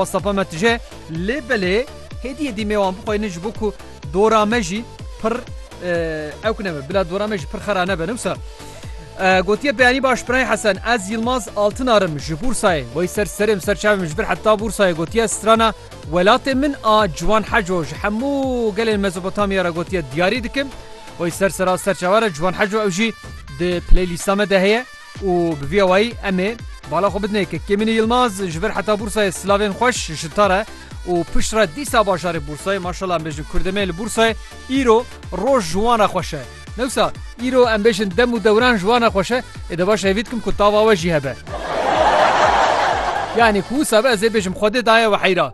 Safa me tije, lê belê hêdiyê dîmê wan bixweynin ji bo ku dora me jî pir ewk nebe, bila dora me jî pir xera nebe. Ne wisa gotiye beyanî baş Pirayê Hesen, ez Yilmaz Altinarim ji Bûrsayê, wey ser serê min ser çavê min ji ber heta Bûrsayê gotiye strana welatê min a Ciwan Heco ji hemû gelên Mezopotamya re gotiye diyarî dikim. Wey ser sera serçava re Ciwan Heco ew jî di playlîsta me de heye. Û bi vî awayî em ê bala xwe bidin ke Kêmînî Yilmaz ji vir heta Bûrsayê silavên xweş ji te re û pişt re dîsa bajarê Bûrsayê maşallah em bêjin kurdemê li Bûrsayê îro roj ji wan re xweş e. Newsa îro em bêjin dem û dewran ji wan re xweş e. Ê de baş e hêvî dikim ku tava we jî hebe. Yanî ku wisa be ez ê bêjim xwedê daye we heyra.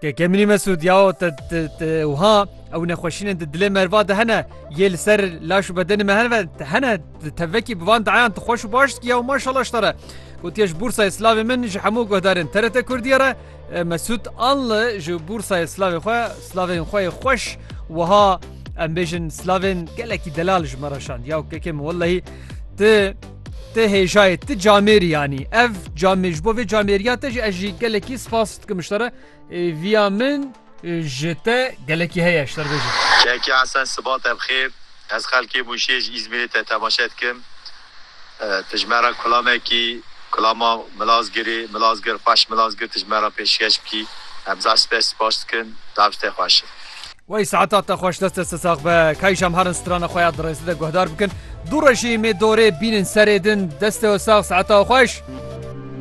Kekemînî Mesûd, ya te te wiha ew nexweşînên di dilê merva de hene yê li ser laş û bedenê me hene hene te vekî bi van diayan tu xweş û baş dikî ya û maşallah ji te re. Gotiye ji Bûrsayê Slavê min ji hemû guhdarên TRT Kurdiyê re Mesûd Anli ji Bûrsayê Slavê xwe Slavên xwe yê xweş wiha em bêjin Slavên gelekî delal ji me re şand ya kekê min wellehî tu te hêjayê ti camêrî yanî ev camê ji bo vê camêriya te jî ez jî gelekî spas Ke miştera viya min ji te gelekî heye ji te re bêjim. Keke Hesen siba te bixêr. Ez xelkê Mûşê ji Îzmîrê te temaşe dikim. Tu ji me re kulamekî, kulama Milazgirê, Milazgir xweş Milazgir tu ji me re pêşkeş bikî. Em zaf spe sipaş dikin. Zaf ji te xweş e. Wey saeta te xweş deste te sax be. Kay ji em herin strana xwe ya di rêzê de guhdar bikin. Du rejî mê dorê bînin serê din. Deste we sax saeta we xweş.